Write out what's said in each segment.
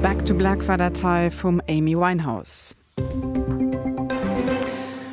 Back to Black war dat hei vum Amy Winehouse.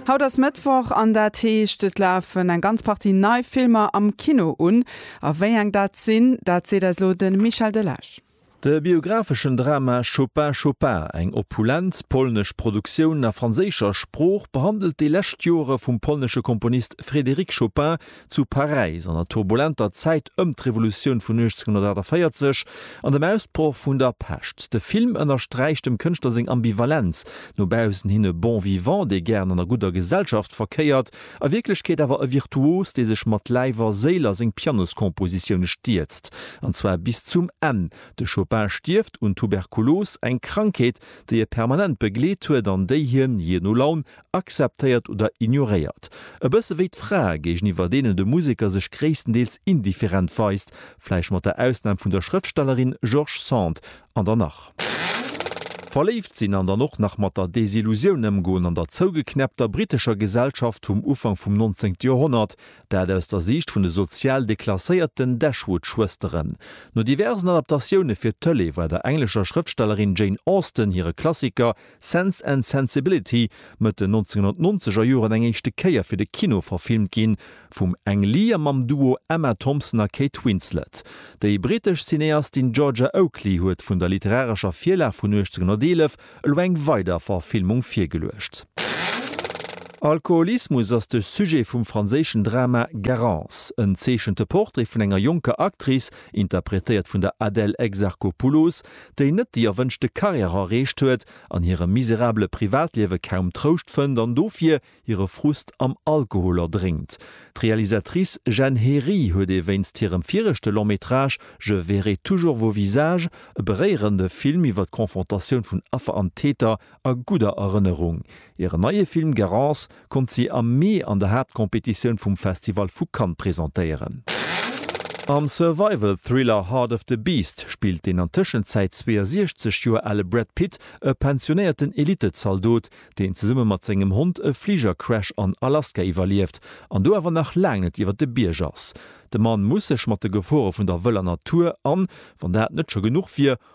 Haut ass Mëttwoch an dat heescht et lafen eng ganz Partie nei Filmer am Kino un. A wéi eng dat sinn, dat seet eis elo de Michel Delage. De biographeschen Drama Chopin, Chopin, eng opulent polnesch Produktioun a franséischer Sprooch, behandelt déi lescht Jore vum polnesche Komponist Frédéric Chopin, zu Paräis an der turbulenter Zäit ëm d'Revolutioun vun 1848 an dem Ausbroch vun der Pescht. De Film ënnersträicht dem Kënschtler seng Ambivalenz, no baussen hin e Bon vivant, dee gären an der gudder Gesellschaft verkéiert, a Wierklechkeet awer e Virtuos, dee sech mat Läif a Séil a seng Pianoskompositioune stierzt, an zwar bis zum Enn. De Chopin stierft un Tuberkulos, eng Krankheet, déi e permanent begleet huet an déi hien, jee no Laun, akzeptéiert oder ignoréiert. E bësse wéi d'Frae, géigeniwwer deenen de Museker sech gréisstendeels indifferent weist, vläicht mat der Ausnam vun der Schrëftstellerin George Sand, an dann nach. Verléift sinn an dann och nach mat der Desillusioun ëmgoen an der zougeknäppter brittescher Gesellschaft vum Ufank vum 19. Joerhonnert, dat aus der Siicht vun de sozial deklasséierten Dashwood-Schwësteren. No diversen Adaptatioune fir d'Tëlee war der englescher Schrëftstellerin Jane Austen hire Klassiker Sense and Sensibility mëtt den 1990 er Joren eng éischte Kéier fir de Kino verfilmt ginn, vum Ang Lee a mam Duo Emma Thompson a Kate Winslet. Déi brittesch Cineastin Georgia Oakley huet vun der literarescher Virlag vun 1811 elo eng weider Verfilmung virgeluecht. Alkoholismus ass de Sujet vum franséischen Drama Garance. En zeechente Portrait vun enger jonker Actrice, interpretéiert vun der Adèle Exarchopoulos, déi net déi erwënschte Carrière erreecht huet, an hirem miserabele Privatliewe kaum Trouscht fënnt an dofir hire Frust am Alkohol erdrénkt. D'Realisatrice Jenn Hery huet ee wéinst hirem viregte Long-métrage Je verrai toujours vos visages e beréierende Film iwwer d'Confrontatioun vun Affer an Täter a gudder Erënnerung. Hiren neie Film Garance konnt si am Mee an der Haaptcompetitioun vum Festival vu Cannes presentéieren. Am Survival-Thriller Heart of the Beast spillt den an Tëschenzäit 62 Joer ale Brad Pitt e pensionéierten Elittezaldot, deen zesumme mat sengem Hond e Fligercrash an Alaska iwwerlieft an do awer nach laang net iwwer de Bierg ass. De Mann muss sech mat de Gefore vun der wëller Natur an, wann dat net scho genuch wier,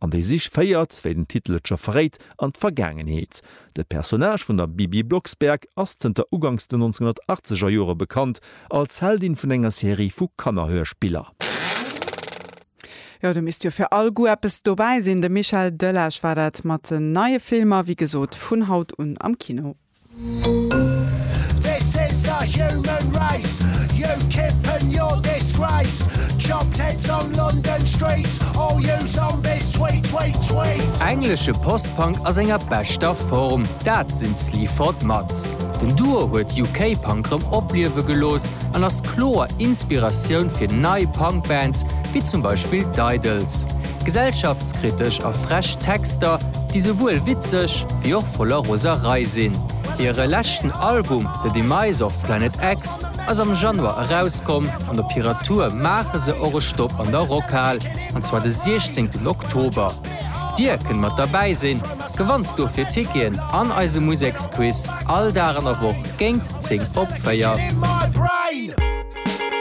An déi Sich féiert, wéi den Titel et scho verréit, an d'Vergaangenheet. De Personnage vun der Bibi Blocksberg ass zënter uganks den 1980 er Jore bekannt als Heldin vun enger Serie vu Kannerhörspiller. Jo, do misst jo fir all Goût eppes dobäi sinn. De Michel Delage war dat mat den neie Filmer, wéi gesot, vun haut un am Kino. This is the human race You kippen your disgrace Chopped heads on London streets All you zombies tweet tweet tweet Englesche Post-Punk a senger beschter Form, dat sinn d'Sleaford Mods. Den Duo huet UK-Punk rëm opliewe gelooss an ass kloer Inspiratioun fir nei Punk-Bands, wéi zum Beispill d'Idles. Gesellschaftskritesch a frech Texter, déi souwuel witzeg wéi och voller Roserei sinn. Hire leschten Album The Demise of Planet X ass am Januar erauskomm an op hirer Tour maache se och e Stopp an der Rockhal, an zwar de 16 Oktober. Dir kënnt mat derbäi sinn, gewannt dofir Ticketen an eise Museksquiz all Dag an der Woch géingt 10 op 4.